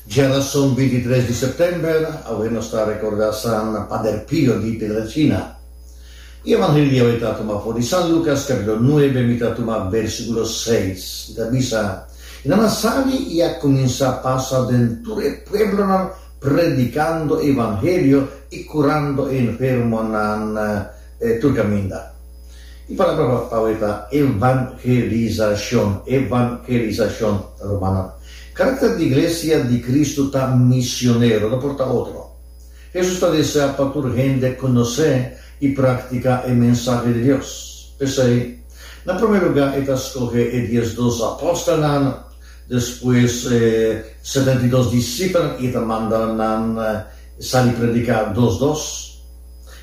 Djerason bintitres di september, awe nos ta rekorda San Pader Pio di Pietrelcina. I evangelio di awe ta tuma for di San Lukas kapitulo nuebe, mi ta tuma bèrsikulo seis. I ta bisa, I nan a sali i a kuminsá pasa den tur e pueblonan predikando e evangelio i kurando e enfermonan. E Turcaminda. E palabra Babawi ta evangelizashon, evangelizashon, rumannan. Karakter di Iglesia di Kristu ta misionero, no por ta otro. Hesus ta desea pa tur hende konosé i praktiká e mensahe di Dios. P'esei, na promé lugá e ta skohe e dies dos apòstelnan, despues e setenta i dos disipelnan i e ta manda nan sali prediká dos dos.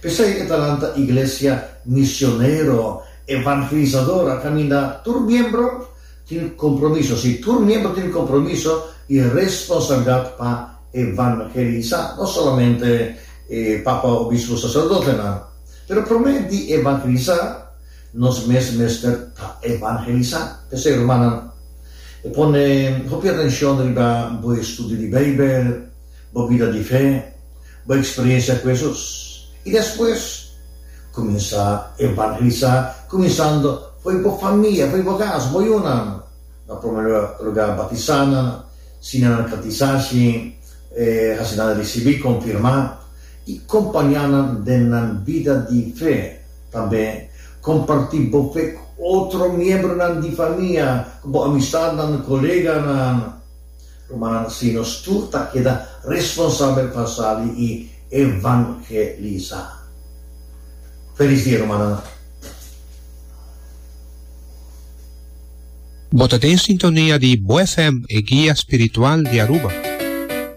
P'esei e ta lanta Iglesia Misionero Evangelizador a kaminda tur miembro tin kompromiso, si, tur miembro tin kompromiso i responsabilidat pa evangelisá, no solamente e papa, obispo, saserdotenan. Pero promé di evangelisá, nos mes mester ta evangelisá. P'esei, rumannan, e pone hopi atenshon riba bo estudio di Beibel, bo bida di fe, Bo a eksperensia ku Hesus i despues kuminsá evangelisá kuminsando fo'i bo famia, fo'i bo kas, bo yunan. Na promé lugá batisá nan, siña nan katisashi, hasi nan risibí, konfirmá, i kompañá nan den nan bida di fe. Tambe kompartí bo fe ku otro miembronan di famia, ku bo amistatnan, koleganan. Ruman, si nos tur ta keda responsabel pa sali i evangelisá. Felis dia, rumannan! Bo ta den sintonia di Bo FM, e guia spiritual di Aruba.